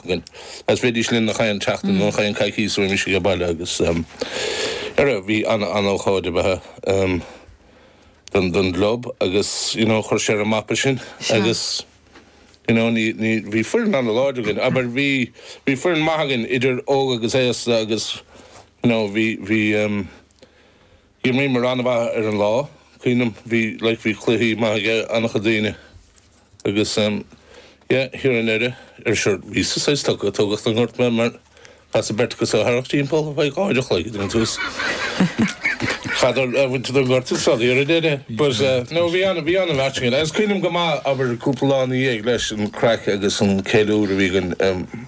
againn. Is bheidís linn nach aon tseachtain nó nach aon coicíos roimis ag a' baile agus eh rud, bhí ana, ana ócáid abair ehm don, don gclub agus you know chuir sé ar a' mapa sinn Sure. agus you know ní, ní, bhí foireann ana láidir againn abair bhí, bhí foireann maith againn idir óg agus aosta agus you know bhí, bhí ehm. D'imríomair an-mhaith ar an lá, cuimhnim, bhí, like, bhí cluichí maith ag an-chuid daoine agus em, yeah, thiar i ndeireadh, ar sure, bhíos saghas tugtha, tógadh den ghort mé mar chaitheas beirt acu a tharrac timpeall ar feadh dhá uair a chloig, ag an tús, chaitheadar a' bhaint den ghort is rud thiar i ndeireadh but eh, no, bhí an, bhí an-mhairsing ann agus cuimhnim go maith, abair, cúpla lá ina dhiaidh leis, an craic agus an ceiliúradh a bhí againn, em.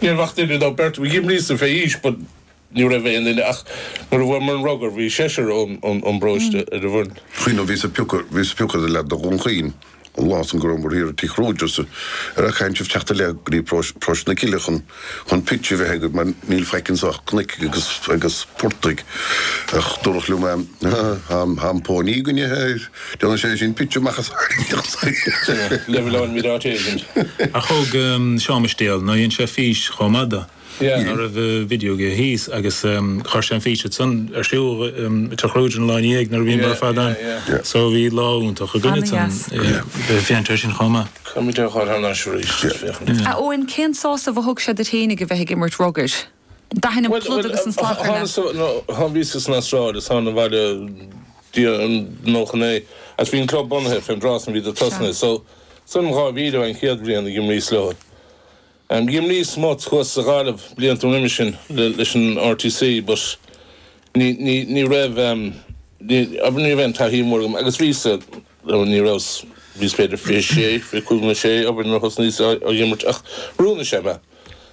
Ní raibh ach duine nó beirt d'imríos-sa fé aois, but ní raibh aon duine ach nuair a bhuamar an rugar bhí seisear ón bparóiste ar an bhfoireann. Chuimhnigh, bhíos ag piocadh, bhíos ag piocadh ar an leaid ó Dhún Chaoin an lá san go rabhamar thiar ag Tigh Kruger just ara caitheann sibh teacht i leith go dtí paróiste, paróiste na Cille chun, chun pitch a bheith agaibh mar níl faic anseo ach cnoic agus, agus portaigh ach dúradh liom eh, tá, tá an pony againne, Déanann sé sin pictiúr maith as aisteach saoil. Never learn without Agent. Ach thóg Seán Mistéal, nó dhein sé fís chomh maith do, ná raibh video aige thíos agus chuir sé an fís ansan ar siúl Tigh Kruger an lá ina dhiaidh nuair a bhíomar ar fad ann so bhí lá iontach againn ansan ag féachaint air sin chomh maith. Táimid ag dhul thar n-ais arís. A Eoin, cén sásamh a thug sé duit fhéinig a bheith ag imirt rugair? D'aithin an plud agus an slaghdar mé. Bhuel, thána so, nó bhíosa san Astráil, is thána abhaile diaidh an 99, agus bhí an club bunaithe fén dtráth san, bhíodar tosnaithe. So, san um 2000 a bhí an chéad bhliain a d'imríos leo. D'imríos smut thuas sa Ghaillimh blianta roimis sin leis an RTC but ní, ní, ní raibh, ní, ní raibh aon taithí mhór agam agus bhíosa, nó ní rabhas, bhíos b'fhéidir fiche a sé, fiche cúig nó a sé, abair nuair a thosnaíos á dh'imirt ach d'oiriúnaigh sé mé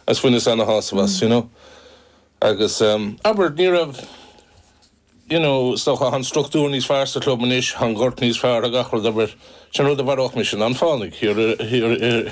agus bhaineas ana-shásamh as, you know. Agus, abair, ní raibh, you know, is dócha, thá an structúr níos fearr sa chlub anois, thá an gort níos fearr, thá gach rud, abair, sin rud a mharódh mise, ná an fánaigh,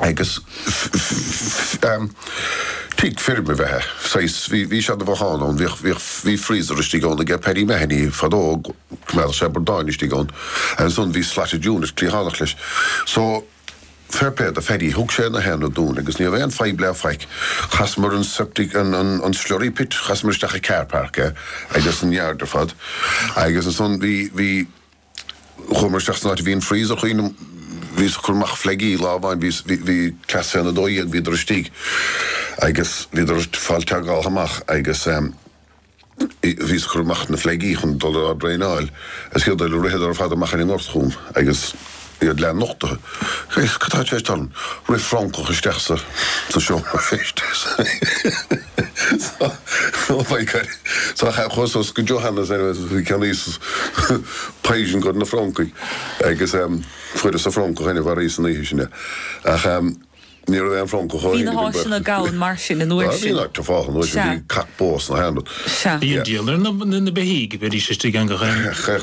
Agus tigh feirme ab ea é, saghas, bhí, bhí seana-bhothán ann, bhíodh, bhíodh, bhí freezer istigh ann ag Paddy Mahony fadó, choimeádadh sé bradáin istigh ann. Agus an, bhí slatted unit cliathánach leis. So, fair play do Phaddy, thug sé na haonaid dúinn agus ní raibh aon fadhb le faic, chasamar an septic, an, an, an slurry pit, chasamar isteach i carpark é agus an yard ar fad. Agus ansan bhí, bhí. Chuamar isteach san áit a bhí an freezer, cuimhním, bhíos ag cur amach fleaigí lá amháin, bhí, bhí, bhí cleas féna 12, bhíodar istigh agus bhíodar ag fáil togálta amach agus eh bhíos ag cur amach na fleaigí chun dul ag traenáil agus céard a tharla, ritheadar ar fad amach ar an ngort chugam agus iad leath nochtaithe. Cad atá i gceist ann? Rith francach isteach sa, sa seomra feistis. Tá chaith chuas go Johannes is cheannaíos poison dos na francaigh agus fuaireas sa francach inniu arís ann ach sin é ach ní raibh aon francach ó Bhí na háiseanna gann mar sin an uair sin. Bhí fáth an uair sin bhí cac bó sna hairn. Bíonn díola ar na beithígh, bheidís istigh ann go